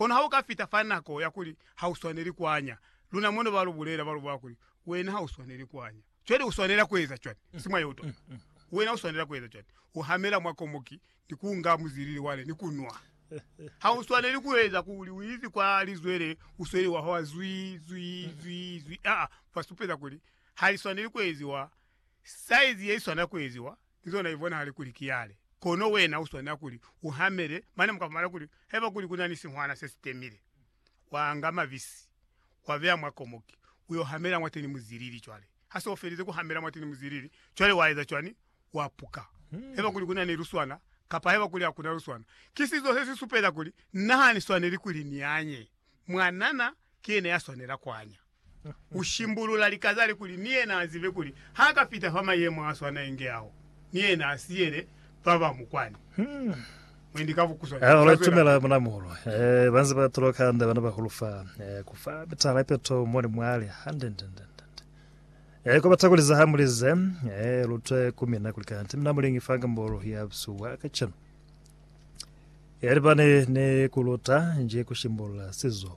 Kono ha u ka fita fa nako ya kuli ha u swaneli ku anya, luna mono ba lu bulela, ba lu bula kuli, Wena ha u swaneli ku anya. Cwale u swanela ku eza cwani? Si mwa yeutona. Wena u swanela ku eza cwani? U hamela mwa komoki, ni ku nga muzilili wale, ni ku nwa. Ha u swaneli ku eza kuli u izi kwa lizwele, u sweli wa hwa zwii, zwii, zwii, zwii. Aa, ba supeza kuli ha li swaneli ku eziwa saizi ye li swanela ku eziwa. Ki zona i bonahale kuli ki yale. Kono wena u swanela kuli u hamele mane mu ka fumana kuli haiba kuli ku na ni sihwana se si temile, wa anga mabisi wa beya mwa komoki u yo hamela mwateni muzilili. Cwale ha se u felize ku hamela mwateni muzilili, cwale wa eza cwani? Wa puka. Haiba kuli ku na ni luswana, kapa haiba kuli ha ku na luswana, ki sizo se si supeza kuli na ha ni swaneli kuli ni anye. Mwanana ki yena ya swanela ku anya. Ku shimbulula lika zale kuli ni yena a zibe kuli ha ka fita fa mayemo a swana inge ao, ni yena a siyele ba ba mu kwani. Mwendi ka bukuswana Hahulu za zwelapili. tumela muna muulu. Eh, ba nze ba tuloka hande bana bahulu fa. Eh, ku fa mitahala ye peto mo ni mwale. Hande, hande, hande, hande, hande. Eh, ku bata kuli za ha mu li ze, eh, lu twe ku mina kuli kanti mina mulingi fa ngambolo ya busihu bwa kacenu. Yalibani ni ku luta nji ku shimbulula sizo.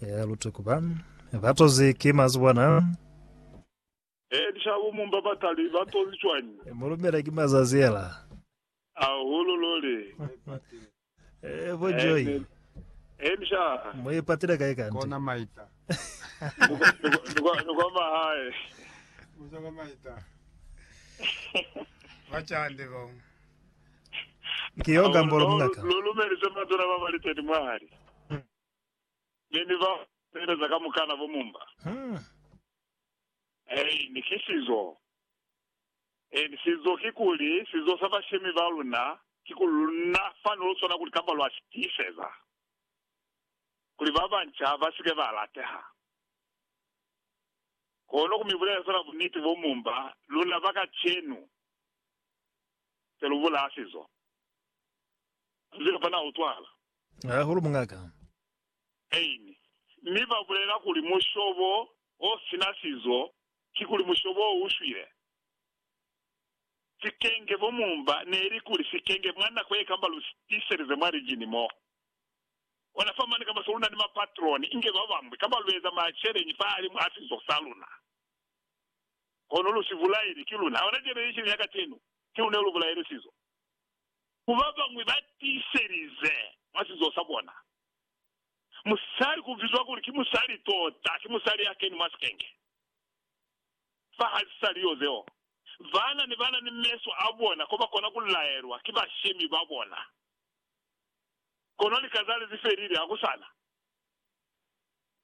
Ya lutuku ba ba tozi ki mazibwana. Ee, lishabo mu mba ba tali ba tozi cwañi? Mu lumela ki mazazi ela. Hahulu luli. Ee, bo Joy. Amen. Ee, msha. Mu ipatile kai kanti? Kona maita. Ni kwa- ni kwa- ni kwa- ni kwa mahae. Uza kwa maita. Bacandi bo. Ki yo gambolo muñata. Lu lumelise matuna ba bali 30 mwahali ne ni bao ba sebeleza kamukana bo mumba. Ein, ki sizo. Ein, sizo kikuli, sizo sa bashemi ba luna, kikuli luna fani lo swana kuli kamba lwa si tiiseza kuli ba banca ba si ke ba lateha. Kono ku mi bulela fela buniti bo mumba luna ba kacenu. Selubula asizo azibe fa na utwala. Hahulu mungaka. Aini. Mi ba bulela kuli mushobo o sina sizo ki kuli mushobo o ushwile. Sikenge fo mumba neli kuli sikenge mwa nako ye kamba lu tiselize mwa lijini mo. Ona fa mane kamba se luna ni mapatroni inge babamwi kamba lueza maceleñi fahalimu a sizo sa luna. kono lu si bulaile, ki luna. Hauna cwalo yesili ya kacenu, ki luna lu bulaile sizo. Ku ba bañwi ba tiiselize mwa sizo sa bona. Musali ku bizwa kuli ki musali tota, ki musali ya keni mwa sikenge. Fa ha si sa li yo zeo, bana ne ba na ni meso a bona ko ba kona ku laelwa ki bashemi ba bona. Kono lika zale zi felile, ha ku sa na.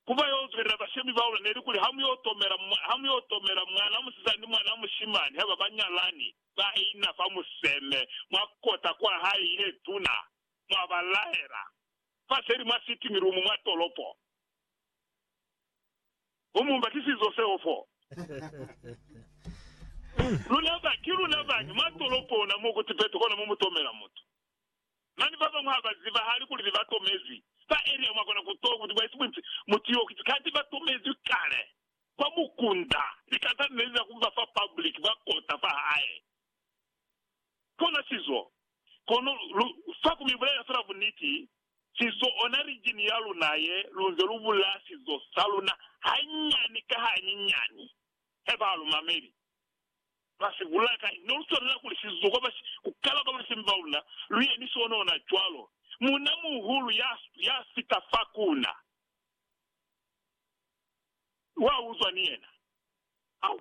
ku ba yo zwelela bashemi ba luna ne li kuli, Ha mu yo tomela, ha mu yo tomela mwan'a musizana ni mwan'a mushimani ha ba ba nyalani, ba ina fa museme, mwa kota kwa hae ye tuna, mwa ba laela, fa seli mwa sitting room mwa tolopo. Mu mumba ki sizo seo fo. Luna ba, ki luna bañi mwa tolopo ona mo ku Tibet kona mo mu tomela mutu. Mane babañwi habazibahali kuli nebatomezwi. Fa Elia mwakona kutola kuti bwaisi bunti mutu yo kiti kati batomezwi kale kwa mukunda. Likata lineli la kuba fa public ba kota fahae. Kona sizo. Kono lu fa kumibulelela fela buniti, sizo ona region yaluna ye, lunze lubulaya sizo saluna hanyani ka hanyinyani. Haiba halumameli. Ba si bulela kai, ne lu swanela kuli si zuha ba si ku kala ba bulise mba una lu ye ni sona ona cwalo. Muuna muhulu ya, ya fita fa kuna, wa uzwa ni yena. Au,